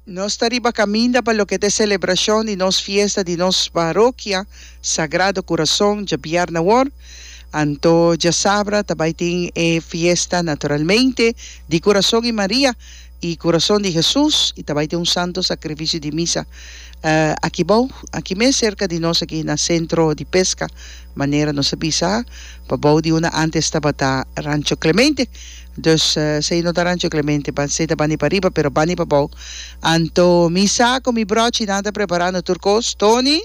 Nos ta riba kaminda pa loke ta e selebrashon di nos fiesta di nos parokia Sagrado Kurason djabièrnè awor. Anto djasabra ta bai tin e fiesta naturalmente di Kurason i Maria i Kurason di Hesus i ta bai tin un santo sakrifisio di misa aki bou aki mes serka di nos aki na sentro di peska manera nos a bisa pa bou di una antes tabata Rancho Clemente. Dus si e no ta rancho Clemente pa seta bani pa riba pero bani pa bou anto mi sa cu mi brochi nan ta preparando tur cos Tony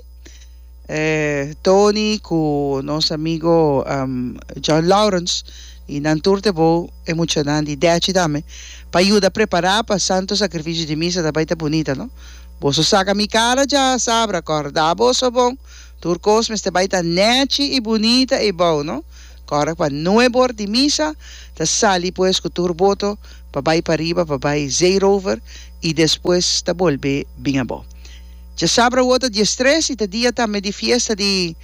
e Tony cu nos amigo John Lawrence y nan tur te bou e muchanan di dechi tambe pa yuda prepara pa santo sacrificio di misa ta bay ta bunita no boso saca mi cara dja sabra corda boso bon tur cos mester bay ta nechi y bunita y bou no. Kòrek pa nueb or di misa ta sali pues ku tur boto pa bai pariba pa bai Zeerover i despues ta bolbe bin abo. Dje sabra wota dies tres i ta dia tambe di fiesta di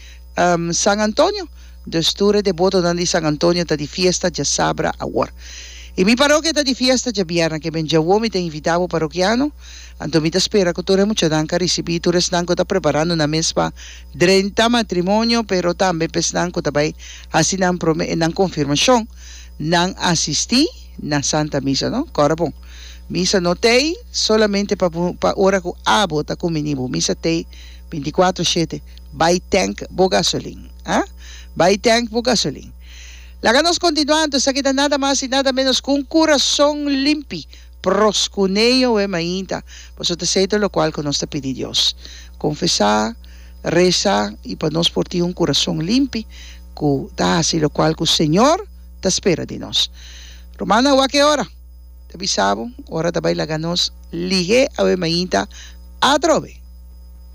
San Antonio, dus tur e de botonan di San Antonio ta di fiesta dje sabra awor. I mi parokia ta di fiesta dje bierna, keben dje awor mi ta invita bo parokiano, anto mi ta spera ku tur e muchanan ka risibi tur esnan ku ta preparando nan mes pa Drenta matrimonio, pero tambe pa esnan cu ta bay haci nan prome e nan confirmacion, nan asisti na Santa Misa, no? Cora bon. Misa no t'ey solamente pa bo, pa ora cu abo ta cumini bo. Misa t'ey binticuatro shete. Bay tank bo gasolin, ha? Bay tank bo gasolin. Laga nos continua anto, esaki ta nada mas y nada menos cu un curason limpi. Proskuneoe mainta, pasobra ta esei ta lokual ku nos ta pidi Dios. Konfesá, resa i pa nos por tin un kurason limpi ku ta hasi lokual ku Señor ta spera di nos. Rumannan awor a ke ora? Ta bisa bo, ora ta bai laga nos lihé awe mainta atrobe.